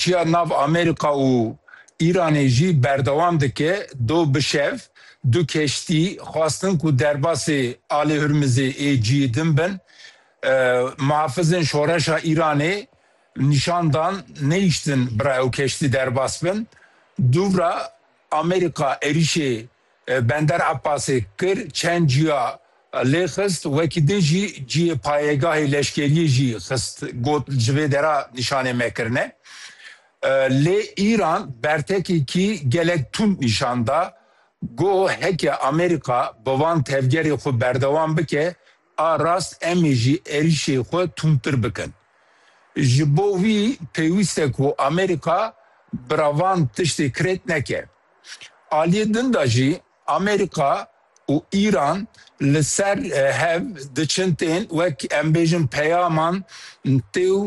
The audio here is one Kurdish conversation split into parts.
Çiya nav Amerîka û Îranê jî berdewam dike, do bi şev du keştî xwestin ku derbasê Alê Hurmizê ê ciyê din bin. Mihafizên Şoreşa Îranê nîşan dan neyiştin bira ew keştî derbas bin. Dûvra Amerîka êrîşê Bender Ebbasê kir çend cîya lê xist, wekî din jî cîyê payegahê leşkeriyê jî xist got ji vê dera nîşanê me kirine. Lê Îran bertekekî gelek tund nîşan da, got heke Amerîka bi van tevgerê xwe berdewam bike, A rast em ê jî êrîşê xwe tundtir bikin. Ji bo wî pêwîst e ku Amerîka bi ra van tiştê krêt neke. Aliyê din de jî Amerîka û Îran li ser hev diçin tên wek em bêjin peyaman têw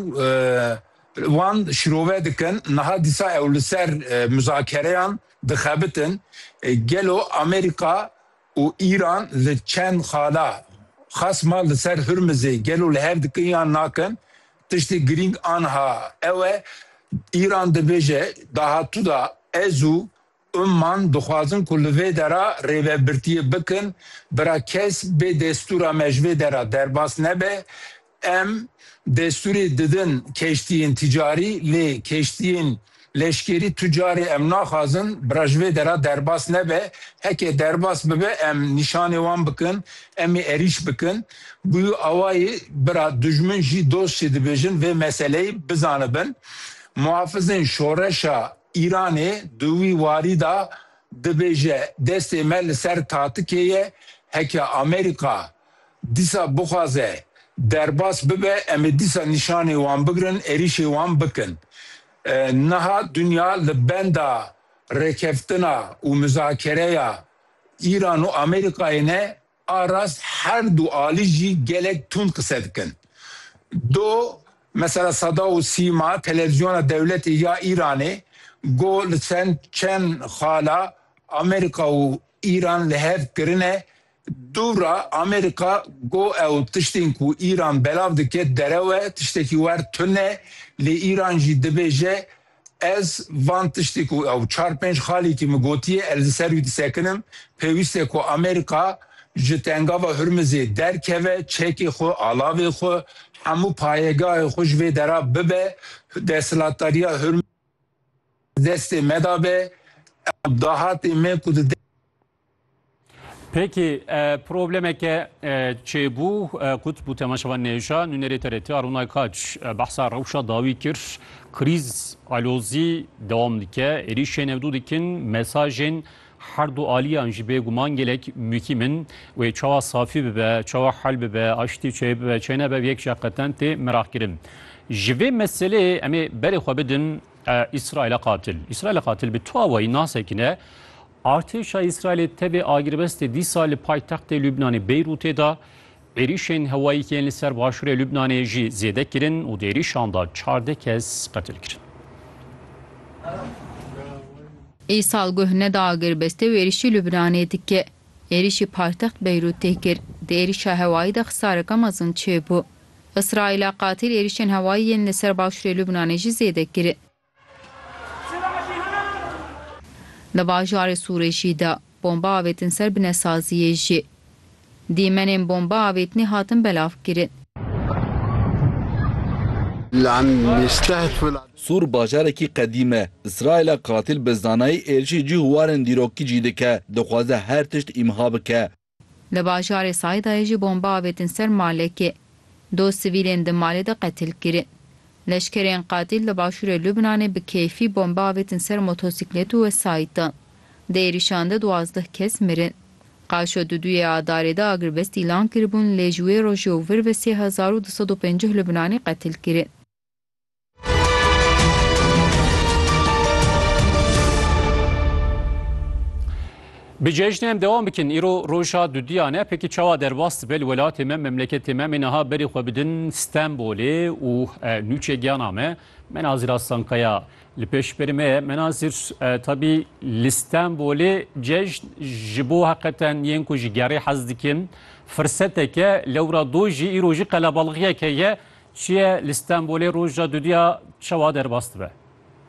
wan şirove dikin. Niha dîsa ew li ser muzakereyan dixebitin. Gelo Amerîka û Îran li çend xala xasma li ser Hurmizê gelo li hev dikin yan nakin, tiştê girîng anha ew e, Îran dibêje dahatû de ez û Umman dixwazin ku li vê dera rêvebirtiyê bikin, bira kes bê destûra me ji vê dera derbas nebe, Em destûrê didin keştiyên tîcarî lê keştiyên leşkerî tu carê em naxwazin bira ji vê dera derbas nebe. Heke derbas bibe em nîşanê wan bikin, em ê erîş bikin. Bûyî awayî bira dijmin jî dost jî dibêjin vê meseleyê bizanibin. Muhafizên şoreşa Îranê di wî warî de dibêje destê me li ser tatikê ye. Heke Amerîka Dîsa bixwaze derbas bibe em ê dîsa nîşanê wan bigirin, êrîşê wan bikin. Niha dinya li benda rêkeftina û mizakereya Îran û Amerîkayê ne, a rast her du alî jî gelek tund qise dikin. Do mesela Sada û Sîma televîzyona dewletê ya Îranê got li çend çend xala Amerîka û Îran li hev kirine Dûra, Amerîka got ew tiştên ku Îran belav dike derew e, tiştekî wer tune ye, lê Îran jî dibêje, Ez van tiştê ku ew çar pênc xalîkî min gotiye, ez li ser wî disekinim, pêwîst e ku Amerîka ji Tengava Hurmizê derkeve, çekê xwe, alavê xwe, hemû payegahê xwe ji vê dera bibe, desthilatdariya Hurmizê destê me de be, ew dahatê me ku di Peki problemeke çêbû kut bû temaşevan nêşa nûnerê TRT Arunay Kaç behsa rewşa dawî kir krîz alozî dewam dike êrîşên hevdû dikin mesajên her du aliyan jî bêguman gelek muhîm in wê çawa safî bibe çawa hel bibe aştî çê bibe çê nebe yek jî qeten tê meraqkirin ji vê meseleyê em ê berê xwe bidin Îsraîla qatil Îsraîla qatil bi tu awayî nasekine Artêşa Îsraîlê tevê agirbestê dîsa li paytextê Lubnanê Beyrûtê da, êrîşên hewayî yên li ser başûrê Lubnanê jî zêde kirin û di êrîşan da çardeh kes qetil kirin. Îsal guh neda agirbestê û êrîşî Lubnanê dike. Êrîşî paytext Beyrût tê kir. Di êrîşa hewayî de xisareke mezin çêbû. Îsraîla qatîl êrîşên hewayî yên li ser başûrê Lubnanê jî zêde kiri. Li bajarê Sûrêşî de bomba avêtin ser binesaziyê jî. Dîmenên bomba avêtinê hatin belavkirin. Sûr bajarekî qedîm e. Îsraîla qatîl bi zanayî êrişê cî û warên dîrokî cî dike. Dixwaze her tişt îmha bike. Li bajarê Saydayê jî bombe avêtin ser malekê. Du sivîlên di malê de qetil kirin. Leşkerên qatîl li başûrê Lubnanê bi keyfî bombe avêtin ser motosîklet û wesayîtan. Di êrîşan de duwazdeh kes mirin. Qaşo Duduyê Adarê de agirvest îlan kiribûn lê ji wê rojê û vir ve sê hezar û du sed û pencîh Lubnanî qetil kirin. Bi cejnê em devam bikin îro roja dudiyan e pekî çawa derbas dibe li welatê me memleketê me em niha berê xwe bidin Stenbolê û nûçê giyana me Menazir Aslankaya li pêş berê me ye Menazir tabî li Stenbolê cejn ji bo heqeten yên ku ji gerê hez dikin firseteke lewra dojî îro jî qelebalixiyeke ye Çiye li Stenbolê roja dudiya çawa derbas dibe?